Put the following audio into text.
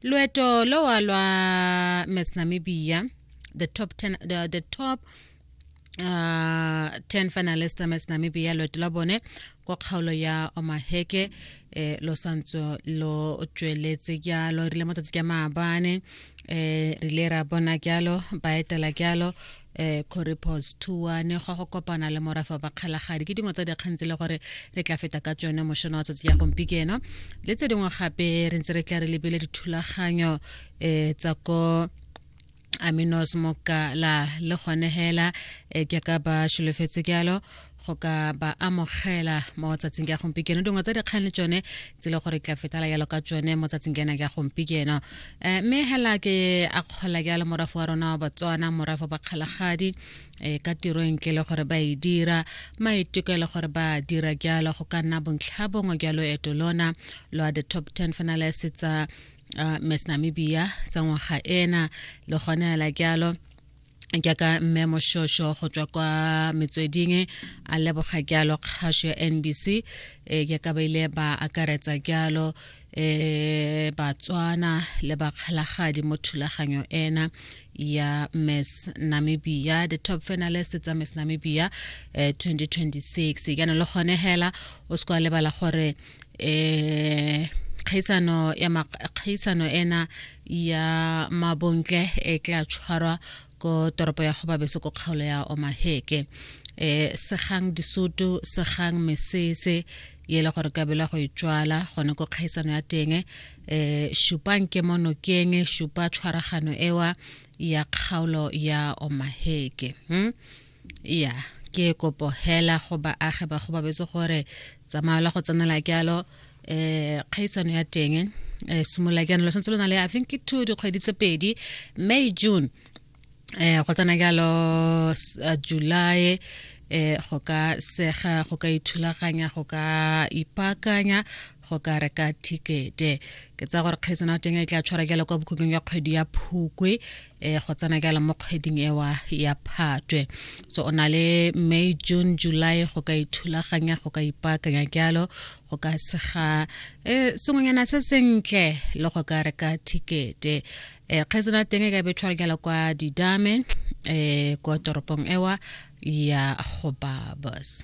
loeto lowa lwa miss namibia the top 10, the, the top uh, 10 finalist tsa miss namibia loeto la bone kwa kgaolo ya omaheke eh, lo santso lo tsweletse kyalo rile mo tsatsi kya maabane eh, rile ra bona kyalo ba etela kyalo eh correpos tour ne go go kopana le morafa ba kgalagadi ke dingwe tsa dikgang tse le gore re tla feta ka tsone mošono wa tsatsi ya gompikeno le tse dingwe gape re ntse re tla re lebele dithulaganyo um tsa ko aminos mokala le gone hela e ke ka ba sholofetse jalo go ka ba amogela mo tsatsing ka gompieno dingwe tsa dikgang le tsone tse le gore tla fetala yalo ka tsone mo tsatsing kena ka gompieno eh, mme hela ke a kgola ke a le morafo wa rona wa batswana morafo ba kgalagadi eh, ka tiro entle le gore ba e dira maiteko e le gore ba dira jalo go ka nna bontlha bongwe jwa loeto lona lwa the top 10 finalist tsa uh, miss namibia tsa ngwaga ena le gone hela jalo jaaka mme moshosho go tswa kwa metsweding a leboga jalo kgaso ya nbc um e, jaaka ba ile ba akaretsa jalo um batswana le bakgalagadi mo thulaganyo ena ya miss namibia the top finalist tsa miss namibia um e, 2026 jaanong le gone hela o se kwa lebala gore eh kgaisano ya kgaisano ena ya mabontle e tla tshwarwa ko toropo ya gobabeso ko kgaolo ya omaheke eh segang disutu segang mesese ye le gore kabela go itswala gone ko kgaisano ya teng eh shupang ke mo nokeng shupa tshwaragano ewa ya kgaolo ya omaheke hmm? ya ke kopo hela go baagi ba go babetse gore tsamaela go tsenela kealo um kgaisano ya teng um eh, simolola jaanong lo santse lo na le i think ke two dikgwedi tse pedi may june um go tsena jalo eh, july eh go ka sega go ka ithulaganya go ka ipakanya go ka reka thikete ke tsa gore kgaisana teng e tla tshwara jalo kwa bokhutlong ya kgwedi ya phukwe e go tsena ka mo kgweding ewa ya phatwe so o na le may june july go ka ithulaganya go ka ipaakanya jalo go ka sega um sengwenyana se sentle le go ka reka thikete um kgaitsena teng e ka be tshwarekela kwa didame um kwa toropong ewa ya go babas